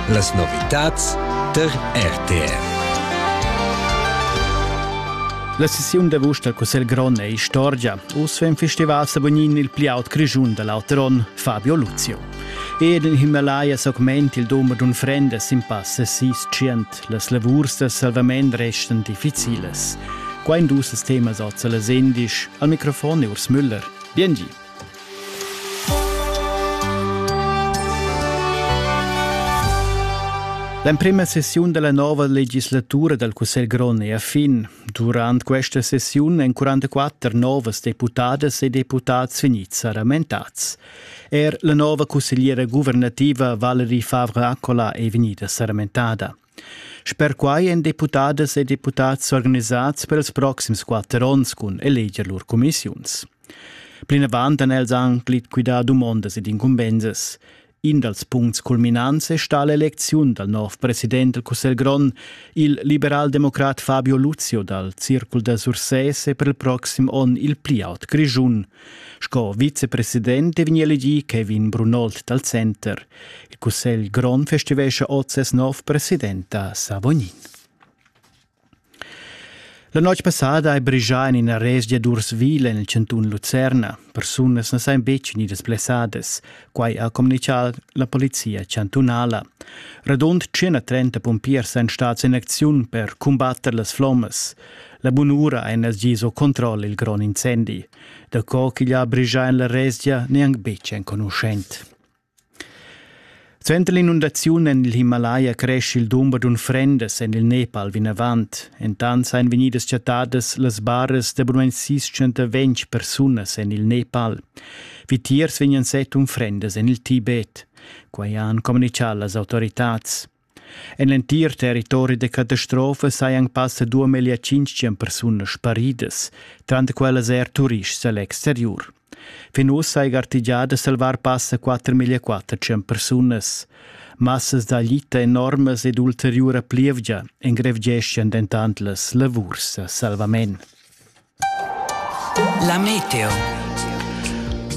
Las novitads tar RTR. La sessiun d'avust dal Cussegl grond è istorgia. Uss vegn festival Sabonin il pli aut Grischun da l'auter onn, Fabio Luzio. Ed in Himalaya s'augment il dumber d'unfrendas sin passa sis tschient. Las lavurs da salvament restan difficilas. Qua in dus temas oz a las endisch. Al microfon è Urs Müller. Biengi. L'emprema sessiun dalla nova legislatura dal Cussegl grond è a fin. Durant questa sessiun èn 44 novas deputadas e deputads vegnids saramentats. Er la nova cussegliera guvernativa Valerie Favre-Accola è vegnida saramentada. Sper quai èn deputadas e deputads s'organisads per ils proxims quatter onns cun eleger lur cumissiuns. Plinavant han els anc liquidà dumondas ed incumbensas. In dals puncts culminants è stà l'elecziun dal nov president del Cussegl grond, il liberaldemocrat Fabio Luzio dal Circul da Sursès è per il proxim onn il pli aut grischun. Sco vicepresident è vegnì elegì Kevin Brunold dal Center. Il cussegl grond festivescha oz ses nov president a Savonin. La notg passada hai brigià en ina resgia d'Ursville en il chantun Lucerna. Persunas na sajan betg vegnidas blessadas. Quai ha communitgà la polizia chantunala. Radund 130 pumpiers èn stads en acziun per cumbatter las flommas. La bunura ein els gis o controll il gron incendi, da co ch'igl ha brigia en la resgia neanc betg enconuschent. Suenter l'inundaziun en il Himalaya cresce il dumber d'unfrendas en il Nepal vinavant. Entant ein vegnidas chattadas las baras da bunamain 620 persunas en il Nepal. Vitiers vegnan set unfrendas en il Tibet. Quai han communichà las autoritads. En l'entir territori da catastrofa sajan passa duamillia tschintg persunas sparidas, tranter quellas er turists da l'exteriur. Fin uss saja artigià da salvar passa 4.400 persunas. Massas da lita enormas ed ulteriura plievgia engrevgeschian dentant las lavurs a salvament. La meteo.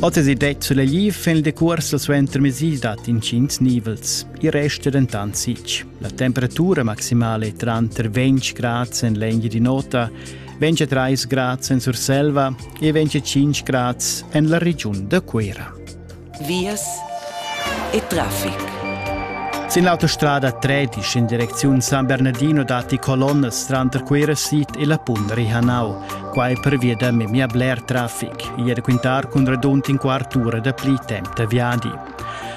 Oz è detto sulla Gli fin il decurs suenter mesi dat incints nivels. I resta dentant sitg. La temperatura maximale è tranter 20 grad en l'egna di nota, 23 grad en Surselva e 25 grad en la regiun da Cuera. vias e traffic. Sin l'autostrada 13 in direcziun San Bernardino datti colonnas tranter Cuira Sid e la Punda Rihanau. Quai pervia da memia bler traffic. Ieri quintar cun radund in quart ura da pli temp da viadi.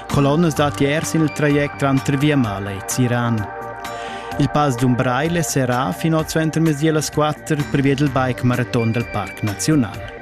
Colonnas datti er sin il traject tranter Viamala e Ziran. Il pass d'Umbraile serrà fino al centro mezdi las 4 per via del bike marathon del Parc Nazional.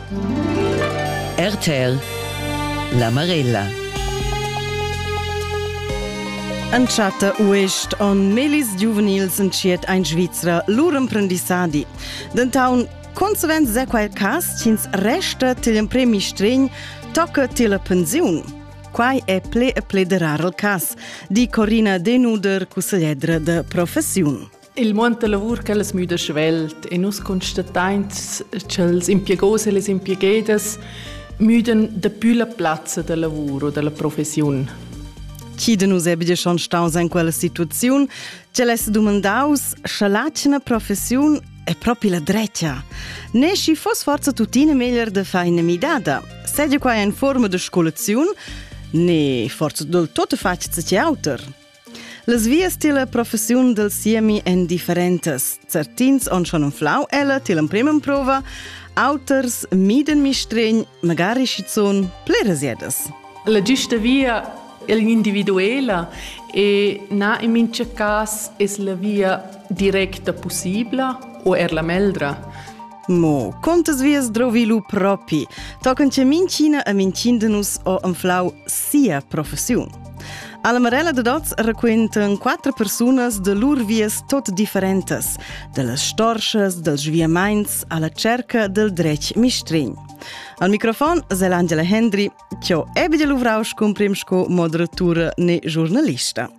RTL La Marella Entschatta uist on melis giuvenils entschiet ein Svizra lur emprendissadi. Dentaun consequent se quel cas ch'ins resta til empremi stregn tocca til pensiun. Quai è ple e ple de rar il cas, di Corina Denuder, cussegliedra de professiun. Il muond da lavur ch'el as müda svelt e nus constatains cha'ls impiegos e les impiegedas müdan dapü la plazza da lavur o da la professiun. Chi de nus ebia schon staus in quella situaziun, ch'el es dumandaus, scha l'atgna professiun è propi la drecia. Ne schi fos forza tuttina meglier de far ina midada. Sedi qua in forma de scolaziun, ne forza del tutto faccia ce auter. Las vias tilla professiun del siemi èn differentas. Certins on schon unflau ella till empremem prova, auters mieden mistregn, magari schizuun plerasiedas. La giusta via è l'individuela e na in mincha cas es la via directa possibla o er la meldra. Mo contas vias drovi lu propi, tocan che minchina e mincindenus ho anflau sia professiun. Alla Marella de Dots raquentan quattro persunas de lur vias tot differentas, dallas storsas, dals sviamaints alla cerca del dretg mistrin. Al microfonzel Angela Hendry, che ho ebbe de luvrau scumprim sco moderatura ne giornalista.